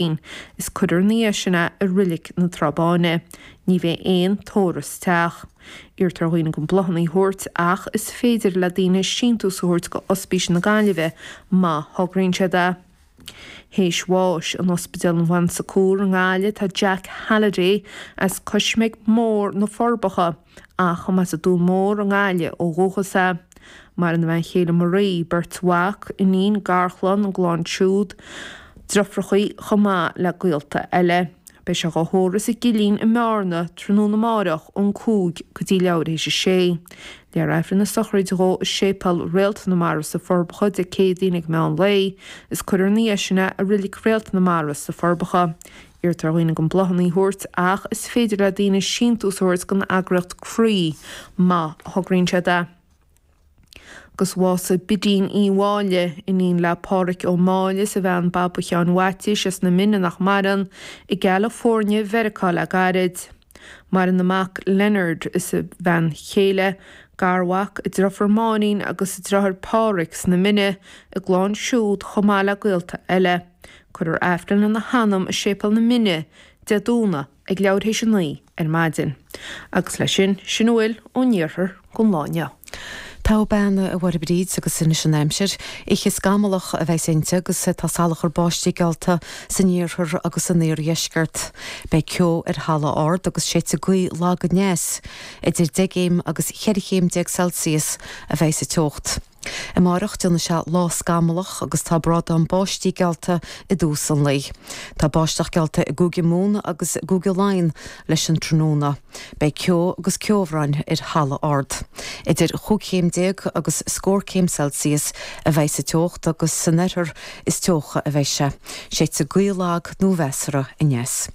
Fhéin. Is cuirfear 'na dhiaidh sin é i Reilig na Trá Báine. Ní bheidh aon tórramh sa teach. Iarrtar ar dhaoine gan bláthannaí thabhairt ach is féidir le daoine síntiús a thabhairt go Ospís na Gaillimhe má thograíonn siad é. Théis bháis in Ospidéal an Bon Secours i nGaillimh tá Jack Halliday as Coismeig Mór na Forbacha. Ach a mb'as an Dún Mór i nGaillimh ó dhúchas é, maireann a bhean chéile Marie, beirt mhac, iníon, garchlann, a gclann siúd, deirfiúrachaí, chomh maith le gaolta eile. Beidh sé dhá thórramh sa gCillín i mBearna tráthnóna amáireach ón cúig go dtí leathuair théis a sé. Léifear Aifreann na sochraide dhó i Séipéal Réalt na Mara sa Forbacha Dé Céadaoin ag meán lae, is cuirfear 'na dhiaidh sin é i Reilig Réalt na Mara sa Forbacha. Iarrtar ar dhaoine gan bláthanna a thabhairt, ach is féidir le daoine síntiús a thabhairt don eagraíocht Croí má thograíonn siad é. Agus bhásaigh Bidín Ní Mháille, iníon le Pádhraic Ó Máille is a bhean Baba Sheáin Mhaitiais as na Mine nach maireann, i gCalifornia Mheiriceá le gairid. Maireann a mac Leonard is a bhean chéile, garmhac, a deirfiúr Máirín agus a deartháir Pádhraic sna Mine a gclann siúd chomh maith le gaolta eile. Cuirfear Aifreann lena hanam i Séipéal na Mine, Dé Domhnaigh, ag leathuair théis a naoi ar maidin. Agus leis sin, sin a bhfuil ón iarthar. don lá inniu. Togha bean, a Mháire Bríd agus anois an aimsir. Oíche scamallach a bheas inti agus tá salachar báistí geallta san iarthar agus san iardheisceart. Beidh ceo ar thalamh ard agus séidfidh gaoth lag aneas. Idir deich gcéim agus cheithre chéim déag Celsius a bheidh sa teocht. Amárach déanfaidh sé lá scamallach agus tá brádán báistí geallta i dtús an lae. Tá báisteach geallta i gCúige Mumhan agus i gCúige Laighean leis an tráthnóna. Beidh ceo agus ceobhrán ar thalamh ard. Idir chúig chéim déag agus scór céim Celsius a bheidh sa teocht agus san oirthear is teocha a bheidh sé. Séidfidh gaoth lag nó mheasartha aneas.